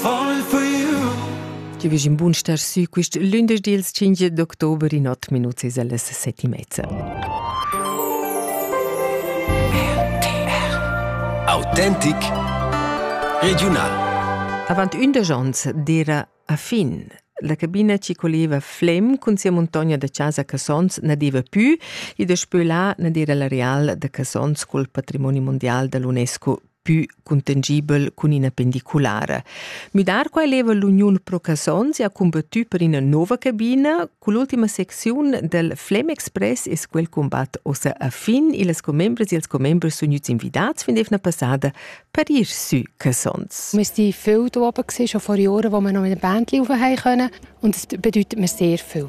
Ti vegis in bun star sü quist lündesch dils 5 d'october in ot minuts es allas set e mezza. Autentic Regional Avant ündesch ons d'era a fin. La cabina ci coleva Flem cun sia montogna da casa Cassons nadeva pü e daspö là nadera l'areal da Cassons col patrimoni mondial da l'UNESCO pü cuntangibel cun ina pendiculara. Müdar quai leva l'Uniun Pro Casons ha combattü per ina nova cabina. Cull'ultima secziun del Flem Express es quel combatt ossa a fin e las commembres e els commembres sun gnüts invidats fin d'eivna passada per ir sü Casons. Wir sind viel da oben gewesen, schon vor Jahren, wo wir noch mit der Band laufen haben können. Und das bedeutet mir sehr viel.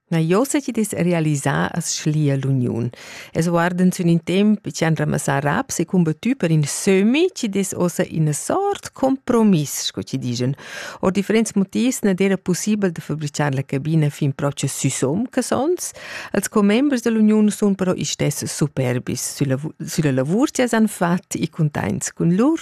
Na Josetje dis realisà as schlia l'uniun. Es guardend sün in temp chi han ramassà raps e combattü per in sömi chi des ossa ina sort compromiss, sco chi digen. Or differents motivs non era possibel da fabricar la cabina fin propcha süsom che sons. Els commembers dell'uniun sun però istess superbis sülla, sülla lavur chi as han fat e containts cun lur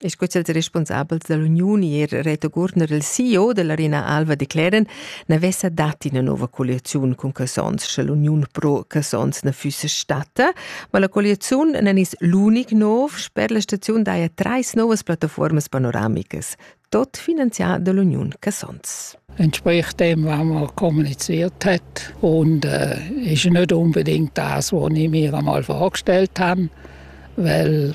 e sco ils responsabels dall'uniun ier Reto Gurner il CEO dell'Arena Alva declaren, ne vessa dat ina nova colliaziun cun Casons, sche l'uniun pro Casons ne füsse stata, ma la colliaziun nen is l'unic nov sper la staziun daia treis novas plattaformas panoramicas, tot finanzià dall'uniun Casons. Entsprechend dem, was man kommuniziert hat. Und äh, ist nicht unbedingt das, was ich mir einmal vorgestellt habe, weil